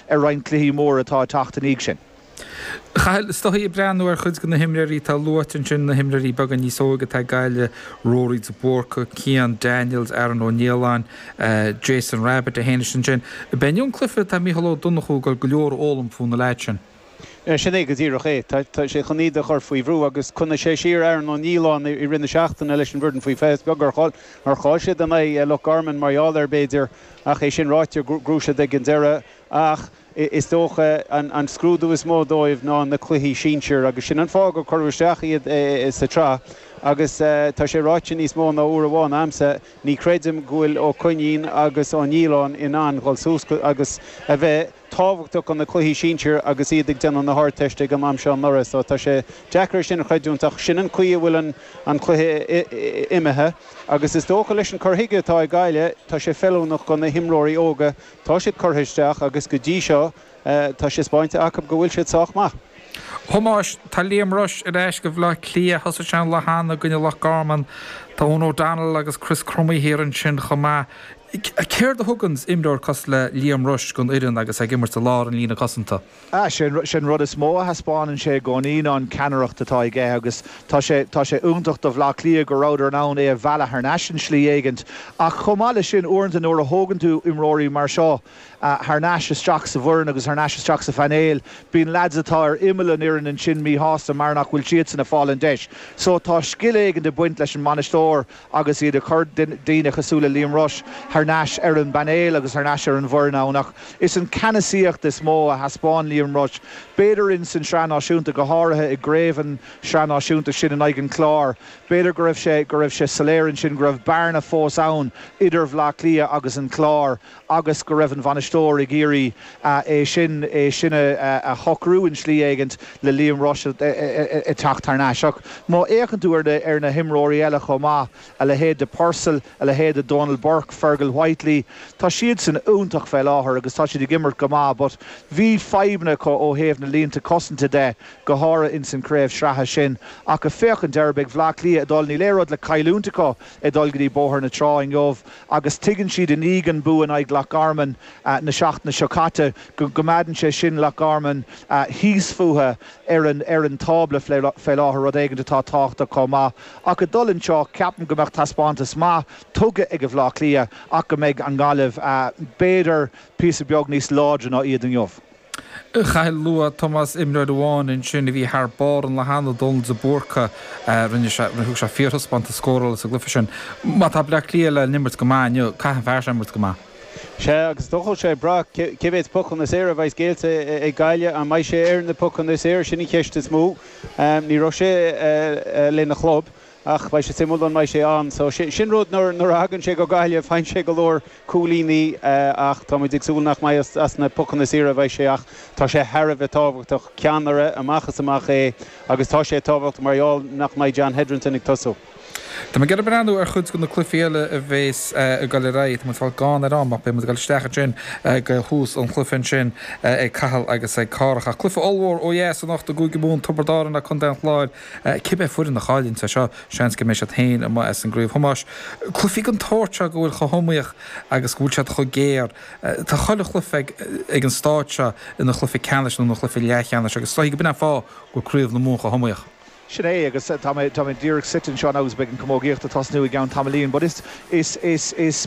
ar roinnt cluichí móra atá ag teacht i ndiaidh sin. A Chathail, is dóichí ag breathnú ar chuid de na himreoirí atá luaite ansin, na himreoirí beaga níos óige atá ag Gaillimh, Rory de Búrca, Cian Daniels, Aaron Ó Nialláin, Jason Rabbitte a théann isteach ansin. Ón gclaí, tá Mícheál Ó Donnchú, ag dul go leor a fhoghlaim faoi na leaids sin. Sin é go díreach é. Tá sé chun iad a chur faoi bhrú. Agus choinnigh sé siar Aaron Ó Nialláin i rith na seachtaine leis an bhfoireann faoi 20 is beag nár chaill siad in aghaidh Loch Garman mar gheall air, b'fhéidir. Ach é sin ráite, ghnóthaigh siad ag an deireadh. Ach is dócha an scrúdú is mó dóibh ná na cluichí sinsir agus sin an fáth gur cuireadh isteach iad sa tsraith. Agus tá sé ráite níos mó ná uair amháin a'msa, ní chreidim go bhfuil Ó Coinín agus Ó Nialláin in ann dhul suas agus a bheith. tábhachtach do na cluichí sinsir agus iad ag déanamh na hArdteiste ag an am seo anuraidh so tá sé deacair é sin a chreidiúint ach sin an chaoi a bhfuil an cluiche imithe agus is dócha leis an cur chuige atá ag Gaillimh tá sé feiliúnach do na himreoirí óga tá siad curtha isteach agus go dtí seo tá sé 'speáinte acu go bhfuil siad sách maith. Thomáis, Tá Liam Rushe ar ais do Bhleá Cliath. Thosaigh sé an lá cheana i gcoinne Loch Garman. Tá Eoin O'Donnell agus Chris Crummey thiar ansin chomh maith. Céard a thugann imreoir cosúil le Liam Rushe don fhoireann agus é ag imirt i lár an líne cosanta? Ah, sé an rud is mó a thaispeánann sé i gcónaí ná an cheannaireacht atá aige agus tá sé, tá sé iontach do Bhleá Cliath go rabhadar in ann é a mhealladh thar n-ais in slí éigint. Ach chomh maith le sin uaireanta nuair a thógann tú imreoirí mar seo, thar n-ais isteach sa bhfoireann agus thar n-ais isteach sa phainéal. Bíonn lads atá ar imeall an fhoirinn ansin mí-shásta mar nach bhfuil siadsan ag fáil an deis. So tá scil éigin ag baint leis an mbainisteoir agus iad ag cur daoine cosúil le Liam Rushe thar n-ais ar an bpainéal agus thar n-ais ar an bhfoireann ann ach is an ceannasaíocht is mó a thaispeáin Liam Rushe b'fhéidir ins an Sraith Náisiúnta go háirithe i gcraobh an Sraith Náisiúnta sin in aghaidh an Cláir. B'fhéidir go raibh sé go raibh sé soiléir ansin go raibh bearna fós ann idir Bhleá Cliath agus an Clár agus go raibh an bainisteoir ag iarraidh é sin é sin a shocrú in slí éigint le Liam Rushe ag teacht thar n-ais. Ach má fhéachann tú ar na himreoirí eile chomh maith, a leithéid de Purcell, a leithéid de Donal Burke, Fergal Whitely, tá siadsan iontach fé láthair agus tá siad ag imirt go maith but bhí fadhbanna acu ó thaobh na línte cosanta de, go háirithe in san craobh sreatha sin. Ach a' féachaint ar ag Bhleá Cliath ag dul, níl aon rud le cailliúint acu. ag dul go dtí Bóthar na Trá inniu agus tuigeann siad i ndiaidh an bua in aghaidh Loch Garman an tseachtain seo caite go gcoimeádann sé sin Loch Garman thíos fúthu ar an tábla fé láthair, rud éigint atá tábhachtach chomh maith. Ach ag dul anseo, ceapaim go mbeadh taispeántas maith tugtha ag Bhleá Cliath ach go mbeidh an Ghaillimh b'fhéidir píosa beag níos láidre ná iad inniu. Agus luaigh Tomás imreoir amháin ansin a bhí thar barr an lá cheana, Dónal de Búrca. Rinne sé, thug sé fíorthaispeántas scórála sa gcluiche sin. Má tá Bleá Cliath le n-imirt go maith inniu, caithfidh an fear seo imirt go maith. Sea, agus beidh sé ag brath cé mhéid pocanna saora a bheidh géillte ag Gaillimh. An mbeidh sé ar na pocanna saora, sin an cheist is mó. Ní raibh sé lena chlub Ach beidh sé suimiúil an mbeidh sé ann. So sin rud, nuair a thagann sé go Gaillimh faigheann sé go leor cúilíní ach táimid ag súil nach mbeidh as na pocanna saora a bheidh sé ach tá sé thar a bheith tábhachtach. Ceannaire amach is amach é agus tá sé tábhachtach mar gheall nach mbeidh John Hetherton ag tosú. Táimid ag breathnú ar chuid de na cluichí eile a bheas ag dul ar aghaidh. Táimid ag fáil gann ar am ach beidh muid ag dul isteach ansin go thús an chluiche ansin ag Cathal agus ag Cárthach. Ach cluiche ollmhór ó dheas anocht i gCúige Mumhan, Tiobraid Árann agus Contae an Chláir. Cibé foireann a chailleann é seo, seans go mbeidh siad féin amuigh as an gcraobh. Thomáis, cluichí den tsórt seo go bhfuil siad chomh hiomaíoch agus go bhfuil siad chomh géar, tá chuile chluiche ag an stáid seo ina chluiche ceannais nó ina chluiche leathcheannais agus is dóichí go b'in an fáth go bhfuil craobh na Mumhan chomh hiomaíoch. Sin é agus tá mé díreach suite anseo agus beidh an chamógaíocht ag tosnú i gceann tamaillín. But is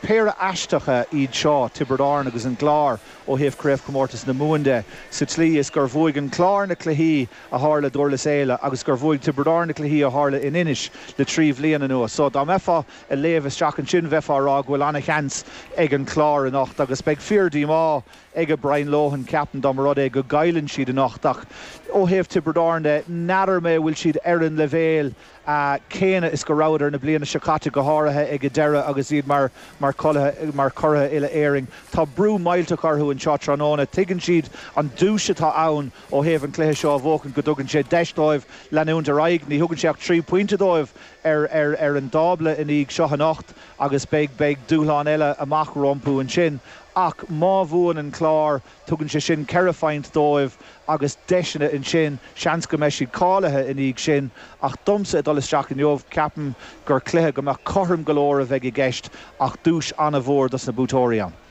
péire aisteacha iad seo, Tiobraid Árann agus an Clár, ó thaobh Chraobhchomórtas na Mumhan de, sa tslí is gur bhuaigh an Clár na cluichí a tharla i nDurlas Éile agus gur bhuaigh Tiobraid Árann na cluichí a tharla in Inis le trí bhliain anuas. So, dá mbeifeá a léamh isteach ansin bheifeá a rá go bhfuil an-sheans ag an Clár anocht agus beidh fíordhíomá aige Brian Lohan ceapaim dá mba rud é go gcailleann siad anocht ach ó thaobh Tiobraid Árann de n'fheadar mé an bhfuil siad ar an leibhéal céanna is go rabhadar an bhliain seo caite go háirithe ag an deireadh agus iad mar churaidh Uile-Éireann. Tá brú millteach orthu anseo tráthnóna. Tuigeann siad an duais atá ann. Ó thaobh an cluiche seo a bhuachan go dtugann sé deis dóibh leanúint ar aghaidh. Ní thugann sé ach trí phointe dóibh ar ar an dtábla i ndiaidh seo anocht agus beidh beidh dúshlán eile amach rompu ansin. Ach má bhuann an Clár tugann sé sin ceithre phoint dóibh agus deiseanna ansin, seans go mbeidh siad cáilithe i ndiaidh sin. Ach domsa ag dul isteach inniu ceapaim gur cluiche go maith cothrom go leor a bheidh i gceist ach duais an-mhór dos na buaiteoirí ann.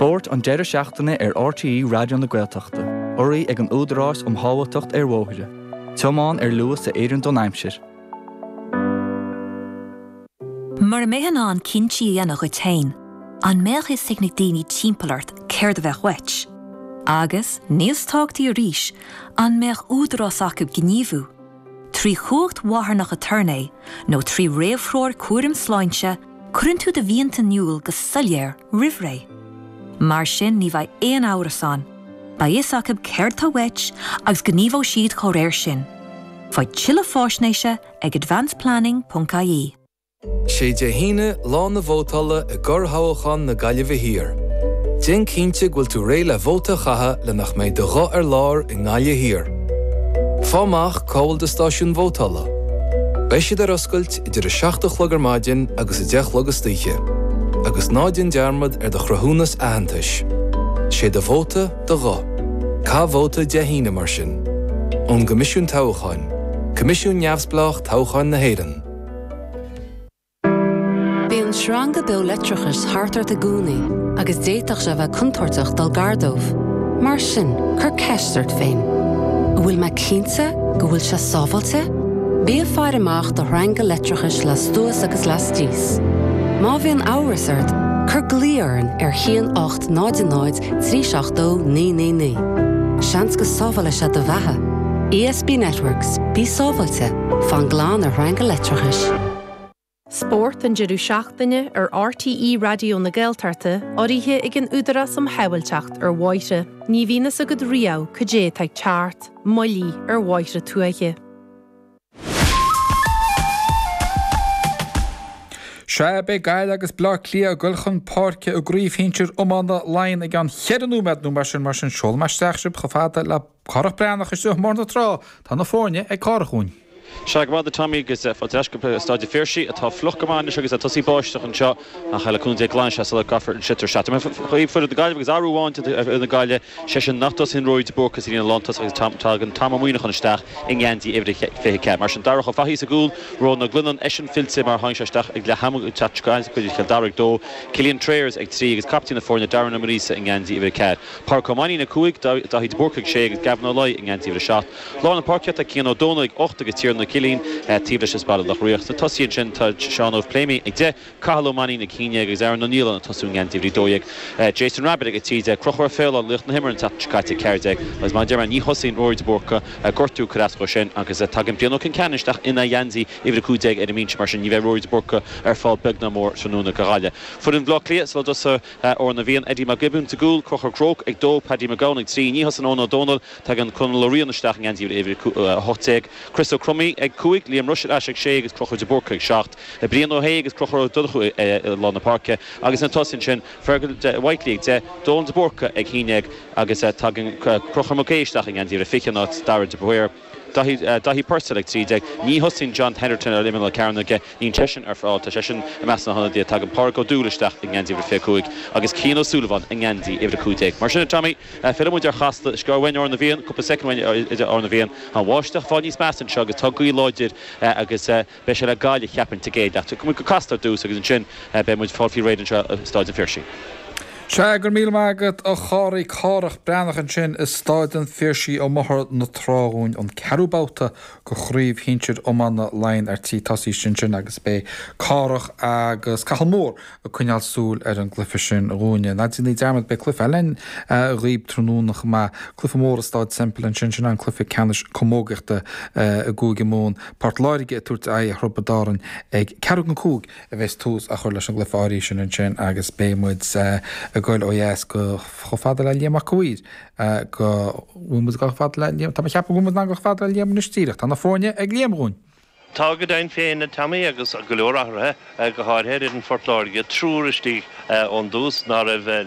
Spórt an deireadh seachtaine ar RTÉ Raidió na Gaeltachta, urraithe ag an Údarás um Shábháilteacht ar Bhóithre, Tiomáin ar Luas a Oireann don Aimsir. Mura mbeifeá in ann cinntí a dhéanamh dhuit féin, an mbeadh fhios ag na daoine timpeall ort céard a bheadh uait? Agus, níos tábhachtaí arís, an mbeadh údarás acu gníomhú? Trí chumhacht mharthanach aturnae nó trí réamhthreoir cúraim sláinte, cuireann tú do mhianta in iúl go soiléir roimh ré. Mar sin ní bheidh aon amhras ann, beidh fhios acu céard atá uait agus gníomhóidh siad dá réir sin. Faigh tuilleadh faisnéise ag advanceplanning.ie. 'Sé Dé hAoine, lá na vótála i gcorrthoghchán na Gaillimhe Thiar. Déan cinnte go bhfuil tú réidh le vóta a chaitheamh le nach mbeidh do ghuth ar lár i nGaillimh Thiar. Faigh amach cá bhfuil do stáisiún vótála. Beidh siad ar oscailt idir 7 a chlog ar maidin agus 10 a chlog istoíche. Agus ná déan dearmad ar do chruthúnas aitheantais. 'Sé do vóta, do ghuth. Caith vóta Dé hAoine mar sin. Ón gCoimisiún Toghcháin. Coimisiún Neamhspleách Toghcháin na hÉireann. Bíonn sreanga beo leictreachais thart ort i gcónaí agus d'fhéadfadh sé a bheith contúirteach dul gar dóibh. Mar sin, cuir ceist ort féin, An bhfuil mé cinnte go bhfuil sé sábháilte? Bí ag faire amach do shreanga leictreachais lastuas agus lastíos. Má bhíonn amhras ort, cuir glao orainn ar 1 800 trí seacht dó naoi naoi naoi. Seans go sábhálfaidh sé do bheatha. ESB Networks, bí sábháilte, fan glan ar shreanga leictreachais. Spórt an deireadh seachtaine ar RTÉ Raidió na Gaeltachta, urraithe ag an Údarás um Shábháilteacht ar Bhóithre. Ní bhíonn fhios agat riamh cad é atá ag teacht, moilligh ar bhóithre tuaithe. Sea, beidh Gaillimh agus Bleá Cliath ag dul chun páirce i gcraobh shinsir iomána Laighean i gceann cheithre nóiméad nó mar sin, mar sin seolaim isteach sibh chomh fada le Cárthach Breathnach istigh i mBóthar na Trá, tá na foirne ag Cárthach dúinn. Sea, go raibh maith agat Tommy agus fáilte ar ais go Staid a' Phiarsaigh atá fliuch go maith anois agus tá sé tosaithe ag báisteach anseo. Ach le cúnamh Dé glanfaidh sé sula gcaithfear an sliotar isteach. Ar aon chaoi foireann na Gaillimhe agus athrú amháin déanta ar fhoireann na Gaillimhe, sé sin nach dtosaíonn Rory de Búrca sa líne lántosach agus tagann Tom Ó Muineacháin isteach i ngeansaí uimhir a 24. Mar sin Darragh Ó Fathaigh sa gcúl, Rónán Ó Gloineáin eisean fillte mar a tháinig sé isteach ag leath ama an tseachtain seo caite in aghaidh Chill Dara ag dó, Cillian Trayers ag trí agus captaen na foirne Darren Ó Muiríosa i ngeansaí uimhir a ceathair. Pádraic Ó Mainnín ag cúig, Daithí de Búrca ag sé agus Gavin Ó Laoi i ngeansaí uimhir a seacht. Lár na páirce tá Cian Ó Domhnaill ag 8 agus Tiernan Ó Cillín taobh leis as Baile Loch Riach. Sna tosaithe ansin tá Seán Óg Pléimionn ag 10, Cathal Ó Mainnín ag 11 agus Aaron Ó Nialláin ag tosú i ngeansaí uimhir 12, Jason Rabbitte ag 13, Crochúr Ó Faoláin laoch na himeartha an tseachtain seo caite ag 14 agus mar a deir mé ní thosaíonn Ruairí de Búrca gortú ag cur as dhó sin agus tagann Brian Ó Concheanainn isteach ina gheansaí uimhir 15 ar an mbinse mar sin ní bheidh Ruairí de Búrca ar fáil beag ná mór tráthnóna do Ghaillimh. Foireann Bhleá Cliath sa lá atá sa Fhoireann a bhíonn, Eddie Mac Giobúin sa gcúl, Crochúr Groarke ag 2, Paddy Mac Gabhann ag 3 Ní thosaíonn Eoin Ó Domhnaill, Tagann Conall Ó Riain isteach i ngeansaí uimhir a 18, Chris Ó Cromaidh ag 5, Liam Rushe ar ais ag 6 agus Crochúr de Búrca ag 7, Brian Ó hAodha agus Crochúr Ó Donnchú i lár na páirce agus sna tosaithe ansin Fergal Whitely ag 10, Dónal de Búrca ag 11 agus tagann Crochúr Mac Aoidh isteach i ngeansaí uimhir 20 in áit Darragh de Paor, Daithí Purcell ag 13, Ní thosaíonn John Hetherton ar imeall na cearnóige, níl seisean ar fáil, tá seisean i measc na hionadaithe, tagann Pádraig Ó Dúill isteach i ngeansaí uimhir 25 agus Cian Ó Súilleabháin i ngeansaí uimhir 15. Mar sin a Tommy. Fillfidh muid ar Chasla. Is gearr uainn Amhrán na bhFiann, cúpla soicind uainn idir Amhrán na bhFiann. Tá an bháisteach ag fáil níos measa anseo agus tá gaoth láidir agus beidh sé le Gaillimh, cheapfainn, sa gcéad leath. Tiocfaidh muid go Casla ar dtús agus ansin beidh muid ag fáil faoi réir anseo i Staid an Phiarsaigh. Sea, go raibh míle maith agat a Chárthaigh Cárthach Breathnach ansin i Staid an Phiarsaigh i mBóthar na Trá dhúinn, an ceathrú babhta de Chraobh Shinsir Iomána Laighin ar tí tosaí ansin agus beidh Cárthach agus Cathal Moore, ag coinneáil súil ar an gcluife sin dhúinne. Ná déanaigí dearmad, beidh cluife eile ann dhaoib tráthnóna chomh maith, cluife mór i Staid Semple ansin, sin é an cluife ceannais camógaíochta i gCúige Mumhan. Port Láirge ag tabhairt aghaidh ar Thiobraid Árann ag ceathrú don cúig a bheas tús á chur leis an gcluife áirithe sin ansin agus beidh muid ag goil ó dheas go chomh fada le Liam Mac a' Mhaoir go bhfuil muid ag goil chomh fada le Liam, tá mé ag ceapadh go bhfuil muid in ann goil chomh fada le Liam anois díreach, tá na foirne ag Liam dhúinn! Tá go deimhin féin a Tommy agus go leor athruithe, go háirithe ar fhoireann Phort Láirge, triúr istigh ón dtús ná raibh.